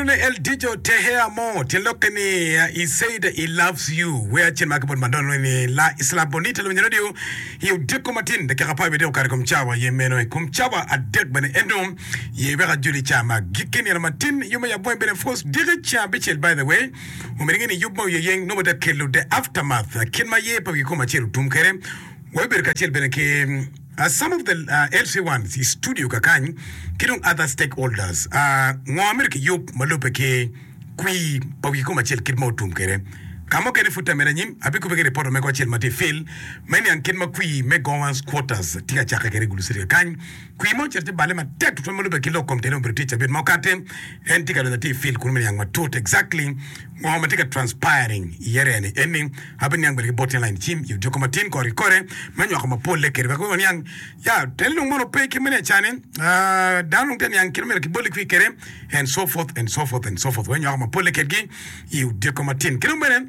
Nonone El Dijo te Hea Mo tye lokke ni a i Seida i Loves You Where acel ma kibolo ma nonone ni La Isla Bonita lwinyo radio i odiko matin dakika apar wiye dek okato i kom cawa aye meno i kom cawa adek bene ento ye wek ajul i ca ma gikki nino matin yub me yabonge bene of course diki ceng abicel by the way omyero inge ni yub ma oyeyeng nongo te kelo the aftermath kit ma ye pe wikom acel otum kwede wabibedo kacel bene ki Some of the LC ones i studio kakany ki dong other stakeholders ngo amito ki yub ma lube ki kwir pa wi kom acel kit ma otum kwede. Ka mukene pud tamera anyim abi kube ki report omego acel ma tye fill me niang kit ma kwir me Gowans Quarters tye ka cakke kwede i Gulu City kakany. Kwir ma ocito ci balle matek tutwal ma lube ki lok kom tene obedo tye cabit ma okate en tye ka donyo atir fill kunu me niang matut exactly Ngo ma tye ka transpiring i area-ni en ni ape niang bene ki bot tyen lain cim i odiko ma tin kore kore me nywako ma polle kede wek waniang ya teni dong mono pe kit mene acane aah dano dong te niang kit ma myero ki boli kwi kede and so forth and so forth and so forth wek nywako ma polle kedgi i odiko ma tin ki dong bene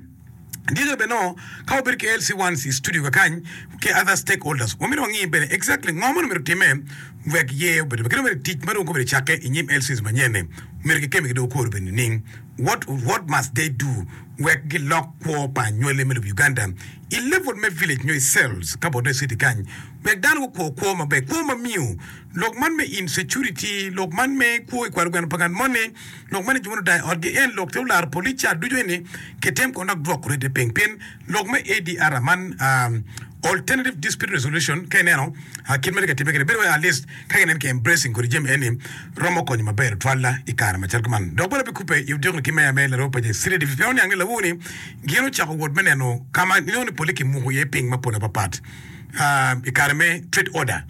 dyere bene nongo ka wabedo ki LC ones i studio kakany ki other stake holders wa myero wangi bene exactly ngo mono myero time wek yee obed ki dong bene tic ma dong gubedo cakke i nyim LCs manyen ni myero ki kemi ki dong okwor bene nining What what must they do wek gilok kwo pa anywale me lobo Uganda i level me village nyo i cells ka bot dong i city kany wek dano gukwo kwo maber kwo ma miyo lok man me insecurity lok man me kwo i kwaro gweno pa ngat moni lok man ni jo moni odayo i otgi en lok te olaro police ca ducu eni kitem kono dok dwoko rete ping pien Lok me ADR man, Alternative Dispute Resolution, ka ineno kit ma tye ka timme kene, bedo wai at least ka ginen ki embracing kodi jami eni romo konyo maber tutwal i kare macalo kuman. Dok bene bikubbe i odiko ki meya me Laroo Pace City Division pien oniang ni lawowo ni gin ocako wot me neno ka ma inongo ni pole kimuko iye piny mapol apapat i kare me Trade Order.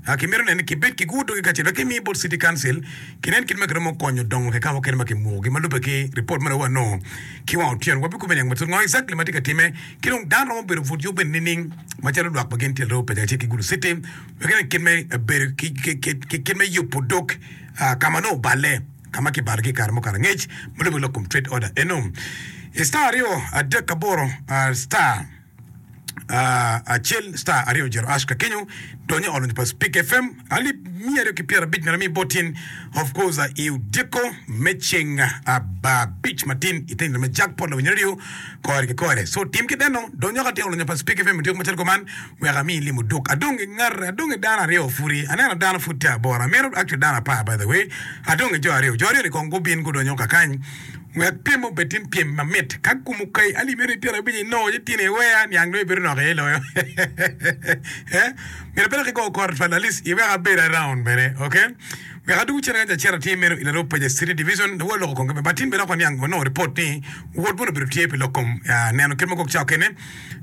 a kimito nen ni kibed ki gudo ki kacel wek kimi bot City Council kinen kit ma kiromo konyo dongo kika mukene ma kimukogi ma lube ki ripot mere wa nongo ki wang otyen wa bikubo niang matut ngo exactly ma tye ka time ki dong dano romo bedo but yo bene nining macalo lwak pa gin tyelre opeja kacel ki gudo city wek inen kit me bedo ki kit me yubo dog ka ma nongo oballe ka ma kibalo ki kare mukato angec ma lube lok kom trade order eno star aryo adek aboro star acel star aryo ojiro ash ka kenyo donyo i olony pa speak fm alip miya aryo ki pyera abic mere mi botin of course uh, i udyeko me ceng aba abic matin iteng lame jak pot lawinyere ryo kore ki kore so tim ki deno donyo ka ti olonyo pa speak fm udyeko macalo kuman wek ami ilimo duk adongi ngat adongi dano aryo pudi aneno dano pud tye aboro amito actually dano apar by the way adongi jo aryo jo aryo ni kong gubin gudonyo kakany Wek pyem obed tin pyem mamit. Ka kum okayi alimi ni tyen abic inongo ci tyen iweya niang dong ibedo nok iye iloyo myero abed dok igo kor twal alis iwek abed around bene ok wek adwogo cene ka jacen atir meno ilarub pa ja city division lawola loko kong kebe but tin bene dok waniang wanongo report ni wod mono obedo tye pi lok kom neno kit magok cao kene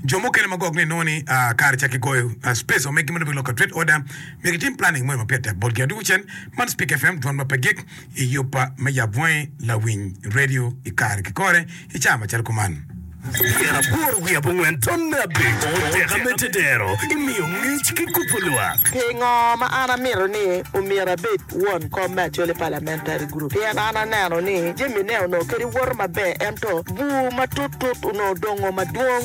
jo mukene magok ni inongo ni kare ca kigoyo space omegi mono obed loko ka trade order myero gitim planning mono mapyet tek botgi adwogo cen man speak fm dwan ma pe gik i yubba me yabonge lawiny redio i kare ki kore i cawa macalo kuman. Myero abwor wiya bot ngwen ton me abico, teka me tedero, i miyo ngec ki kubo lwak. Pingo ma an amito ni omyero abed won kom me Acholi Parliamentary Group? Pien an aneno ni jamine onongo kadi woto maber ento bur matut tut onongo dongo madwong.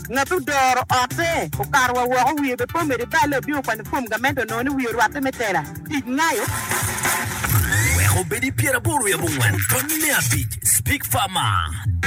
Ngat odoro otte okato wa woko, wiye be pe omedo i balle, obino okwanyo fom gamente onongo ni wiye orwatte me tela tic ngayo. Wek obed i pyeraboro i abongwen, tonni me abic, Speak Farmer.